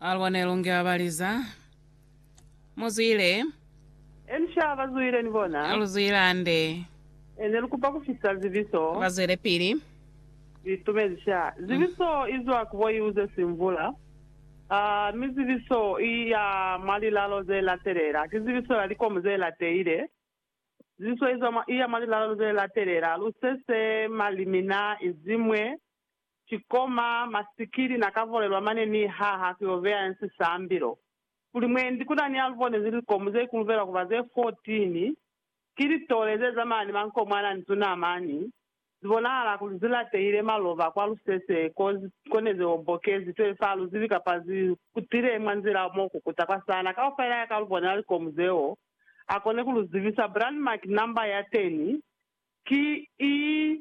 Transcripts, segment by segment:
Alwa ne lu nge abaliza. Mu zwile. Eni sha ba zwile ni bona. Lu zwile hande. E ne lu kupa ku fisa zibiso. Ba zwelepili. Litumezi sha. Zibiso i zwa ku bo iuze simvula. A, mi zibiso i ya mwa lilalo ze latelela. Ki zibiso ya likomu ze lateile. Zibiso i zwa mwa, i ya mwa lilalo ze latelela, lusese, malimina, izimwe, Ki koma masikili na ka volelwa mane ni ha ha ku yo beya nsi sambilo. Kuli mwendi ku na ni alubone ze likomu ze kulubelwa ku ba ze 14, ki litole ze zamana ni mankomwana ni tunamani, zi bonahala kuli zi latehile maloba kwa lusese ko, ko ne ze obokezi 12 ha lu zibi kapa zi kutile mwa nzila mo kukuta kwa sana. Kaufela ya ka alubone la likomu zeo a kone ku lu zibisa. Brand Mark Number ya 10 ki i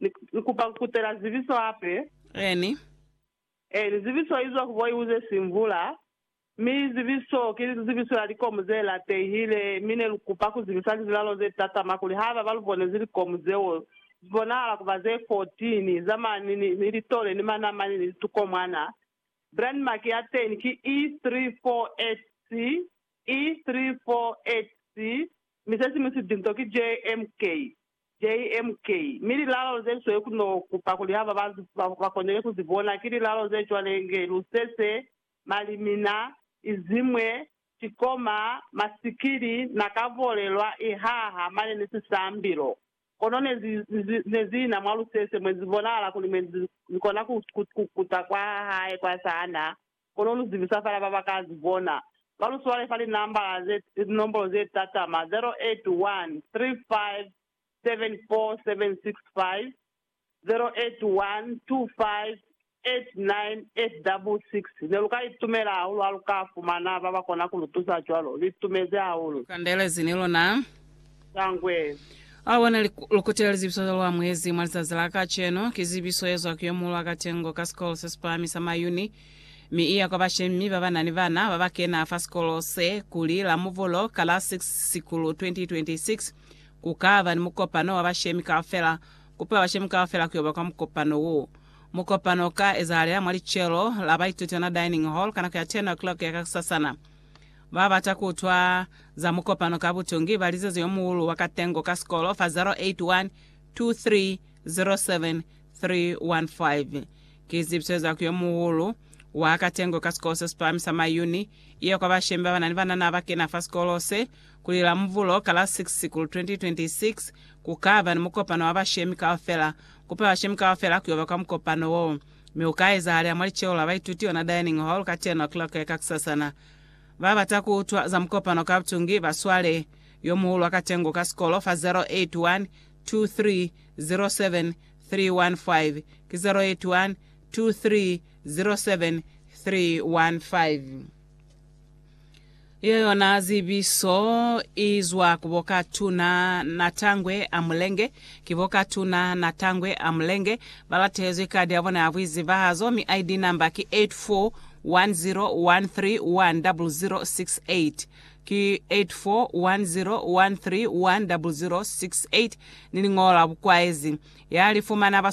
Ni kupa ku kutela zibiso hape. Eeni. Eeni, zibiso izwa ku boiu ze si mvula, mi zibiso ki zibiso ya likomu ze latehile, mi ne lu kupa ku zibisa lizilalo ze tatama kuli haiba ba lu bonezi likomu zeo zi bonahala ku ba ze kotini, za mani, ni, ni litole, ni manamani, ni litukomwana. Brandmark ya teni ki E348C, E348C, mi se siñwi sidinto ki JMK. JMK. Mi lilalo ze sweli ku no kupa kuli ha ba banzi ba konile ku zi bona, ki lilalo ze cwale nge lusese, malimina, izimwe, cikoma, masikili, na ka volelwa, ihaha, mane ni sisambilo. Kono ne zi, zi, ne zi ina mwa lusese mwe zi bonahala kuli mwe zi, zi kona ku, ku, ku kuta kwa hae kwa sana, Kono lu zibisa fela ba ba ka zi bona. Ba lu swale fa linambala ze, linombolo ze tatama, 0813574765, 0812589866, ne lu ka itumela hahulu ha lu ka fumana ba ba kona ku lu tusa cwalo. Lu itumezi hahulu. Lu kandelezi ni luna. Sangwe. A bona likute la lizebiso zeo lu amuhezi mwa lizazi la kacenu. Ki zebiso ye zwa ku yo muulu wa katengo ka sikolo se si pahami sa mwa Uni, mi i ya kwa bashemi ba ba na ni bana ba ba kena fa sikolo se, kuli Lamuvolo ka la 6 Sikulu 2026, ku ka ba ni mukopano wa bashemi kaufela. Kupa bashemi kaufela ku yo ba kwa mukopano wo. Mukopano u ka ezahalela mwa licelo la baitutana dining hall ka nako ya 10:00 ya kakusasana. Ba bata ku utwa za mukopano ka butungi ba lizazi yo muulu wa katengo ka sikolo fa 0812307315. Ki zibiso za ku yo muulu wa katengo ka sikolo se si pahami sa Mayuni, iyo kwa bashemi ba ba na ni banana ba kena fa sikolo se, kuli Lamuvulo ka la 6 Sikulu 2026 ku ka ba ni mukopano wa bashemi kaufela. Kupa bashemi kaufela ku yo ba kwa mukopano wo, mi u ka ezahalea mwa liceo la baituti ona dining hall ka 10 o'clock ya kakusasana. Ba bata ku utwa za mukopano ka butungi ba swale yo muhulu wa katengo ka sikolo fa 0812307315 ki 08230735. Iyo yona zibiso i zwa ku bo Katuna Natangwe a Mulenge, Ki bo ka Tuna Natangwe a Mulenge, ba latehezwi kadi ya bona ya buizibahazo, mi ID number ki 84101310068. Ki 84101310068 ni liñolo la bukwaezi. Ya li fumana ba